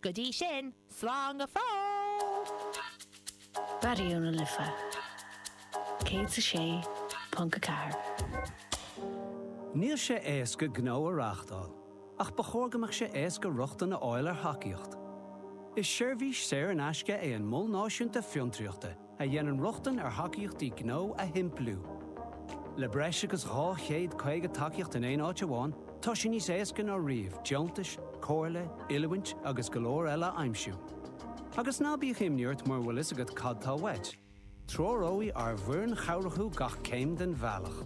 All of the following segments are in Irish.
Go dtí sin, slán go fóill! Raidió na Life 106.4. Níl sé éasca gnó a reáchtáil, ach ba chóir go mbeadh sé éasca rochtain a fháil ar thacaíocht. Is seirbhís saor in aisce é an Mol Náisiúnta Fiontraíochta. a dhéanann rochtain ar thacaíochtaí gnó a shimpliú. Le breis agus 250 tacaíocht in aon áit amháin, tá sé níos éasca ná riamh deontais, comhairle, oiliúint agus go leor eile a aimsiú. Agus ná bíodh imní ort mura bhfuil fhios agat cad tá uait, treoróidh ár bhfoireann chabhrach thú gach céim den bhealach.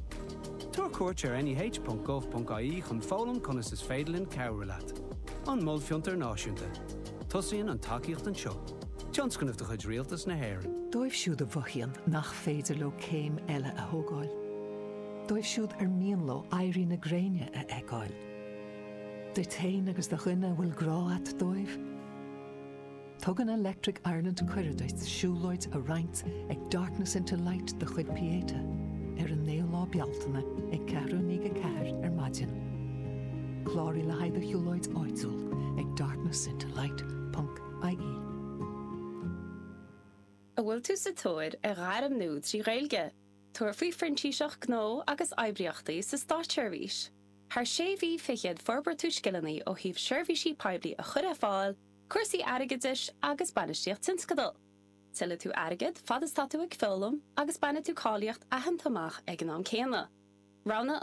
Tabhair cuairt ar neh.gov.ie chun foghlaim conas is féidir linn cabhrú leat. An Mol Fiontar Náisiúnta. Tosaíonn an tacaíocht anseo. Tionscnamh de chuid Rialtas na hÉireann. Dóibh siúd a mhothaíonn nach féidir leo céim eile a thógáil. Dóibh siúd ar mian leo éirí na gréine a fheiceáil. Duit féin agus do dhuine a bhfuil grá a't dóibh. Tugann Electric Ireland cuireadh duit siúlóid a roinnt Alex, ag Darkness into Light de chuid Pieta ar an 9ú lá Bealtaine ag ceathrú i ndiaidh a ceathair ar maidin. Cláraigh le haghaidh do shiúlóid áitiúil ag darknessintolight.ie. An bhfuil tú sa tóir ar ghairm nua trí Ghaeilge? Tabhair faoi Phrintíseacht Gnó agus Oibríochtaí sa Státseirbhís. Thar sé mhí fichead forbróidh tú scileanna ó thaobh seirbhísí poiblí a chur ar fáil, cúrsaí airgeadais agus bainistíocht tionscadal. Tuillfidh tú airgead fad is tá tú ag foghlaim agus bainfidh tú cáilíocht aitheanta amach ag an am céanna. Roghnaigh an.